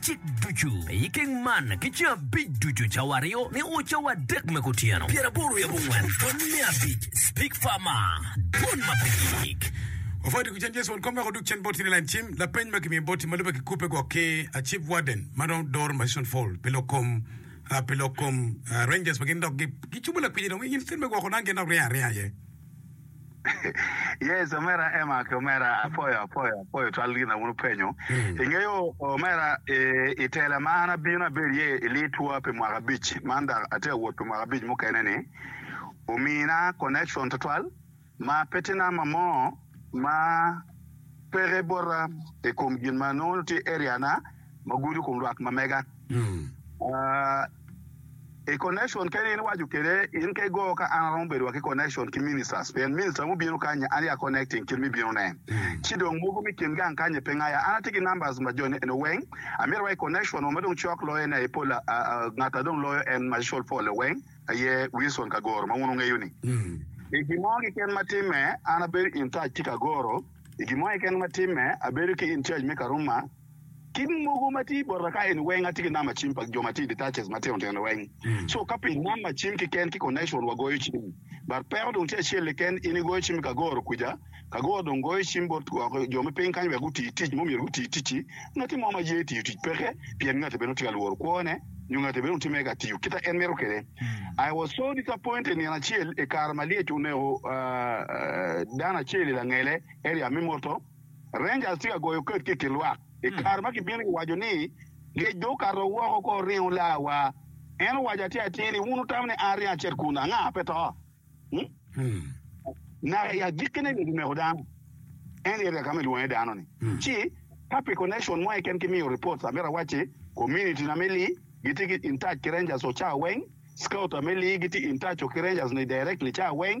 Cik ducu me i keng man ki ceng abic ducu, cawa aryo nio o cawa adek me kutyeno. Pyer aboro yabo ngwen pwony me abic speak far ma dwon ma pe gik. Ofati ku cen Jesu won kom wek odug cen boti ni lain cim. Lapeny ma kimiyo boti ma lube ki kubbe gwok ki a chief warden ma dong doro Mason Fall pi lok kom pi lok kom Rangers ma gin dok gi cubo lakwinyi dong i in state me gwoko dang gin dok riya aringa aye. Yes omera Emma ki omera apoyo apoyo apoyo twal gin na wun wupenyo. Hmm. Ingeyo omera i, i tela ma an abino abedo iye i litwa pi mwaka abic man dok atye ka wot pi mwaka abic mukene ni omina connection tutwal ma pe tye namba mo ma peke bota i kom gin ma nongo tye area na ma gudo i kom rwak ma mega. I connection kene in iwaco kwede in ka igo ka an aromo bedo wa ki connection ki ministers pien minister mubino kanya an ya connecting kit mi bino ne ci dong mogo mi kin gang kanya pe ngaya an atye ki numbers ma jo eno weng amito wa i connection wa ma dong cok loyo ne aye pol ngat adong loyo en macol pole weng aye Wilson kagoro ma wun wungeyo ni i gin mo ki ken ma time an abedo in touch ki kagoro i gin mo ki ken ma time abedo ki in charge me karuma Kit mogo ma tye bota ka eni weng atye ki namba cim pa jo ma tye i detaches ma tino tino weng so ka pi namba cim kiken ki connection wa goyo cim but peko dong tye acel kiken in igoyo cim i kagoro kuca kagoro dong goyo cim bot woko jo me piny kany wek guti tic ma omyero guti ticci ngati mo ma ye tiyo tic peke pien ngati bene dong tye ka lworo kwone nyo ngati bene dong tye mere ka tiyo kita en mito kwede I was so disappointed nino acel i kare ma lyec oneko dano acel i langele area me motor. Rangers tye ka goyo ked ki kilwak i kare ma kibino ki waco ni ngec dong okato woko ko oringo laa wa. En owaco atir atir ni wun wutamo ni an ringo acit kun anga pe to. Naka i agikkine ni gimeko dano en i area ka ma ilwongo iye dano ni ci ka pi connection mo keken ki miyo reports amito awac ci community na me Lee gitye ki in touch ki Rangers o ca weng, scouter me Lee gitye in touch o ki Rangers ni directly ca weng.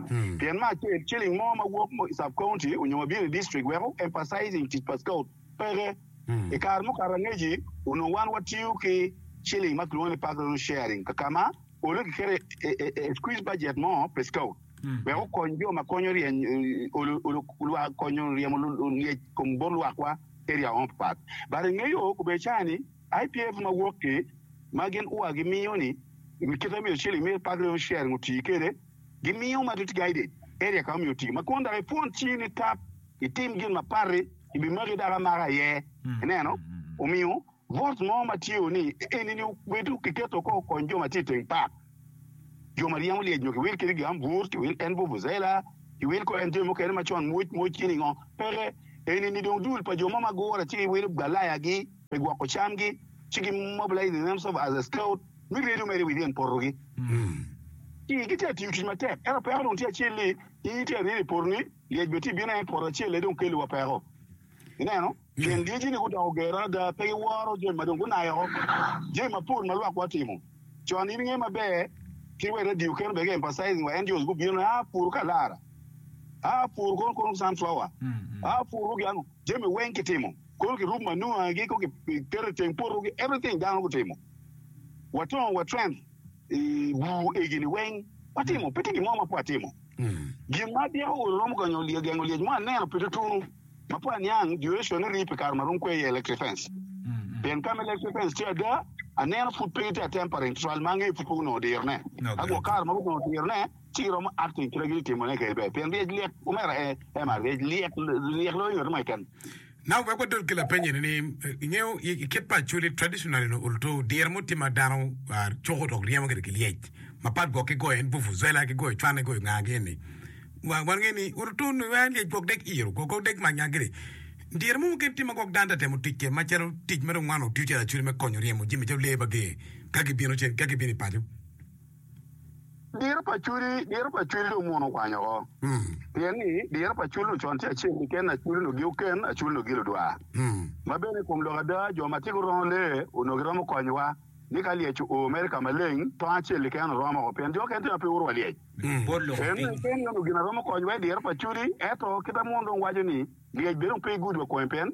pien me acel ciling mo ma wok i sub county onyo ma bino i district weko emphasizing tic pa scout peke. I kare mukato angeci onongo wan watiyo ki ciling ma kilwongo ni park revenue sharing kakama onongo kiketo a squeeze budget mo pi scout wek okony jo ma konyo ryeny lwak konyo ryemo lyec kom bot lwakwa area mo papat but i nge yo kubedo cawa ni IPF ma wok ki ma gin ua gimiyo ni kite myero ciling me park revenue sharing oti kede gimiyo ma dit guided area ka omiyo tii ma kwon dok ipwon cii ni tap itim gin ma patti ibimaki dok amaka aye ineno omiyo bot mo ma tye o ni enini obedo kiketo ko kony jo ma tye iteng park jo ma ryemo lyec nyo ki wil kedi gam bur ki wil en bubuzela ki wil ko en jami mukene ma con mwoc mwoc cini ngo peke enini dong dul pa jo mo ma gure ci iwilo galaya gi me gwoko camgi, ci gimobilaizi themselves as a scout me redo mere within potogi. Ii, Gitye ka tiyo tic matek, ento peko dong tye acel ni, Nyingi tye ka ryeny i potoni, lyec bene tye ka bino aye, poto acel aye dong kelliwa peko. Ineno? Pien lyeci-ni gudoko ger adada, pe giworo jami ma dong gunayo woko, jami mapol ma lwakwa otimo con. In ingeyo maber, kit wa i radio kene bene gi-emphasizing wa, NGOs gubino ni, Aa puru ka lara, aa puru kono kono sunflower, aa puru gin ango, jami weng kitimo. Kono ki room manure gi ko giketo iteng poto ki everything dano gutimo watongo wa trend i bur egi ni weng watimo pe tye gin mo ma pe watimo gin ma adyeko olo romo konyo lye gengo lyec mo aneno pi tutunu ma pe aniang duration ni rii pi kare ma romo kwe iye electric fence pien ka ma electric fence tye ada aneno pud pe gitye atempering tutwal ma angeyo pud pe gunongo dirone ka gwok kare ma gunongo dirone Ci iromo acting kit ma gin itimo ne kede ber pien ryec lyek omera e ema ryec lyek lyek loyo nyoto mo keken. Now wek wadod ki lapeny eni ni ingeyo ikit pa acholi traditional in olto diro mo tye ma dano cuko dok ryemo kede ki lyec ma pat gwok ki goyo en vuvuzela ki goyo cwane goyo nga gi eni wa wan nge ni olto nongo en lyec gwok dek iro gwok gwok dek manya kede diro mo mukene tye ma gwok dano ta temo tic kede ma calo tic ma dong wan otiyo calo acholi me konyo ryemo jami calo lee ma ger ka gibino cen ka gibino i paco Diro pa cwil, diro pa cwil dong mono okwany oko. Pien ni diro pa cwil nu con tye acel keken, acwil nu gi oken, acwil nu gi ludwa. Ma bene i kom lok ada, jo ma tye gurongo lee onongo giromo konyowa ni ka lyec oo mere ka maleng, tong acel keken oromo, pien jo okene tye ma pe guuru wa lyec. Pien ni kene onongo gin a romo konyowa i diro pa cwili. Ento kit ma mono dong waco ni lyec bene dong pe igudwa kome, pien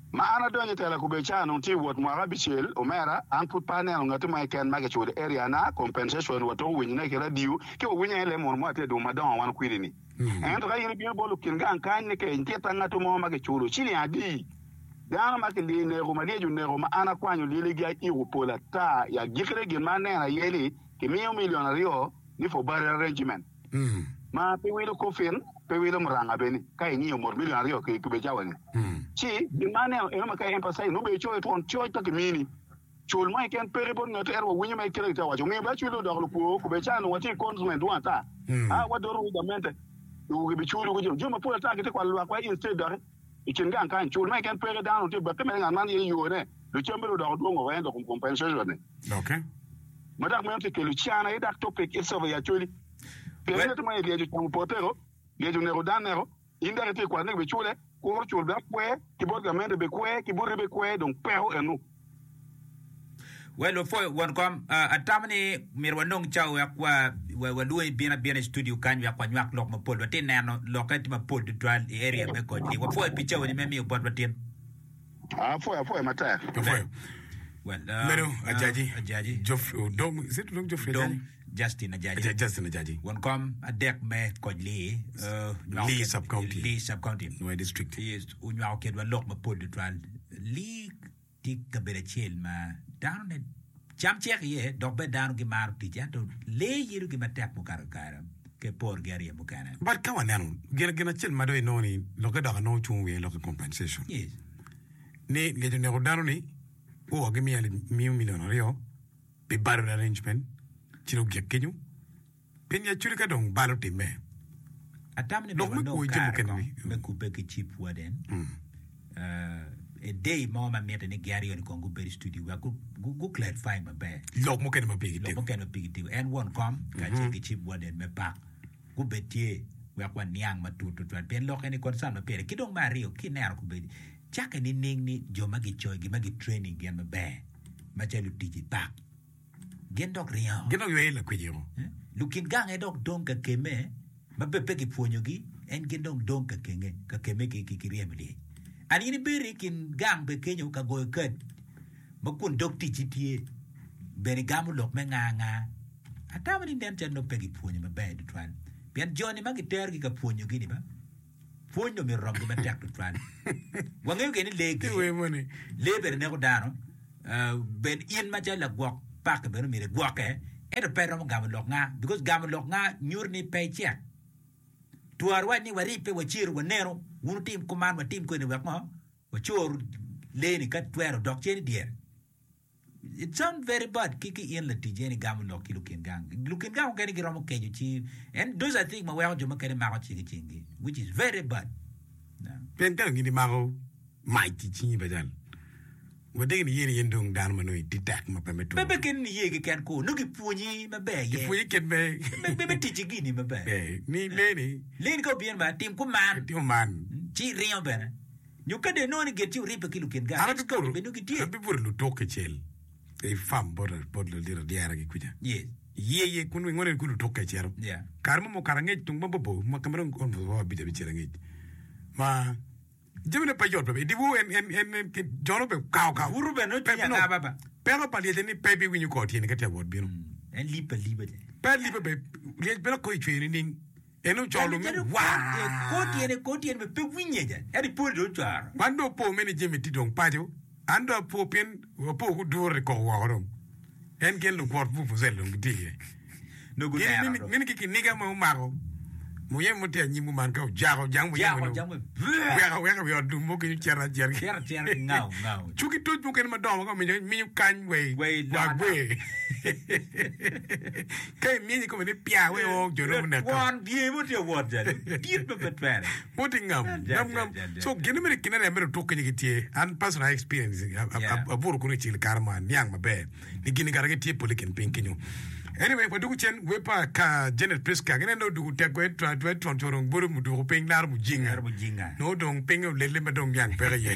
Ma an adonyo i tela kubedo calo anongo tye i wot mwaka abicel, omera, an pud pe aneno ngati mo keken ma kiculo area-na, compensation, wa tuko winyone ki radio, ci wawinyo aye lee mono mo atir dong madongo wan kwidi-ni. Ento ka in ibino bot lukin gang kany ni kec, nitye ta ngatu mo ma kiculo ciling adi? Dano ma kilyel neko, ma lyec oneko, ma an akwanyo lyeligi ayiko pol ata, i agikki-ne gin ma aneno aye ni kimiyo milion aryo ni for barrel regiment. ma pe wilo koffin, pe wilo muranga bene, ka ingiyo mot million aryo ki tube cawa ni. Ci gin ma aneno eno ma ka i emphasize nongo bene icoyo twon coc ka ki mini. Cul mo keken peke bot ngat ento wa winyo ma ikele gitye ka waco. Omiyo bene acwilli odoko lukwo kube ca nongo watye i confinement dwong ata. Aa wa doto wu gamente i wu gi bi culu ki jo. Jo mapol ata gitye ka kwalo lwak wa instead doki. I kin gang kany, cul ma keken peke dano tye bakke mere, ngat man tye yo ne, dok cam bene odoko dwong woko ento kom compensation ne ma dok meno tye kelo can aye dok topic itsofa i acholi pien ngat mo aye lyec ocamo potego, lyec oneko dan neko, in dok itye kwat ni bicule, kuro cul dok kwer ki bot gamente bikwer ki boti bikwer dong peko enu. Well, lupwoyo won kom, ah, atamo ni myero wanong cawa wek wa, wa, walwongi ibin abina i studio kany wek wanywak lok mapol. Watye ka neno lokke tye mapol tutwal i area me kocni. Wapwoyo pi cawoni me miyo botwa tin. Ah, apwoyo, apwoyo matek. Apwoyo. Well, ah, Medo ah, Ajaji, Ajaji. Geoff- Odong, is it Odong Geoffrey Odong. Ajaji? Justin Ajaji, Justin Ajaji. won kom adek me koc Lee onywako Lee kit- Sub-County. Lee Sub-County. Nue District. Yes, onywako kedwa lok mapol tutwal. Lee tye kabedo acel ma dano ne cam cek iye dok bene dano gimaro tic ento lee yelo gin matek mukato kare ki porgi aryo mukene. But ka waneno, gin gin acel ma dong inongo ni lokke dok anongo cung wiye lokke compensation. Yes. Ni ngec oneko dano ni, oo gimiya li- miyo milion aryo, pi balo arrangement ci dong gik kenyo pien ya culi ka dong balo otimme. Atam ni dong anongo kare kong me kubbe ki Chief Warden a day mo ma mitte ni gin aryo ni kong gubed i studio wek gu clarify maber lok mukene ma pigi lok mukene ma pigi tiko. En won kom kacel ki Chief Warden me pak gubed tye wek waniang matut tutwal pien lokke ni concern ma pire. Ki dong me aryo kineno kubedi Cakke nining ni jo ma gicoyo gin ma gitraining gin maber macalo lutic i pak gin dok ringo? Gin dok yweye lakwiciko. Lukit gang aye dok dong ka kemme ma bed pe kipwonyogi, en gin dong dong ka kenge ka kemme ki ki ki ryemo lyec. An in ibedo i kin gang be kenyo ka goyo kad ma kun dog ticci tye bene igamo lok me nga nga. Atamo ni nen calo nongo pe gipwonyo maber tutwal pien jo-ni ma giterogi ka pwonyogi-ni ba. Pwony dong myero oromgi matek tutwal. Wangeyo gire ni lee Ki wer gire, moni. lee bene neko dano. Ah, ben in macalo lagwok paki bene myero igwokke, ento pe iromo gamo lok nga, because gamo lok nga nyuto ni pe icek. Twero wac ni waribbe, waciro, waneno, wun wutim kuman, watim kweni wek ngo? Wacor lee-ni ka twero dok cen i dyere. It's sound very bad ki ki in latic eni gamo lok ki lukin gang. Lukin gang okene giromo kejo ci and those are things ma weko jo mukene mako cik i cingi which is very bad. Yeah. Pien kara gin imako mac i cingi pa cal. Wadegi ni yen yen dong dano ma nongo iti tek ma pe me tur. Bebe keni ni ye keken ko no gipwonyi maber ye. Gipwonyi kit me me me, me ticci gini maber. Eh, ni leni. Leni ka obyen ba tim kuman. Tim man. Ci ringo bene. Arabbi bute luduk kicel i fam bot lulit adyera gi kuca. Iye iye kun wingo nen ku luduk kacito. Kare mo mukato angec tung mabor-bor ma ka ma dong on pwod abic abic cel angec ma jami ne pe yot bene. I dye wor en en en en jone obedo kawo kawo. Butu bene nongo tye Pe nongo anga baba? Peko pa lyecce ni pe ibiwinyo kor tyene ka tye ka wot bino. En lib aliba ce. Pe aliba bene. Lyec bene koko icweyo nining? En ocolo me war. Wan dong opor me ni Jimmy tye dong paco. An dong apor pien apor gudure i koko woko dong. En ki en lukwot vuvuzela dong gitye iye. Gin mini ki kiniga ma omako muyeme mo tye anyim kuman ka ojako jang muyeme dong oweko aweka i wi ot lum mo kenyo cito acita. Cu ki toc mukene madongo ma ka omiyo minyo kany wa i gwe. Won dye mo tye wot jali dit ma pe twere. Woti ngam, ngam, ngam. So gin mere kine ne mere otuk kenye gitye. An personal I experience abuto kunu icil kare ma niang maber ni gini kara gitye pole kin piny kenyo. Anyway wa dugu cen we pa ka Janet Prisca gine no dugu tek we twa twa twa twa dong bolo muduku piny laro mujinga. Laro mujinga. No dong piny olele ma dong niang peke ye.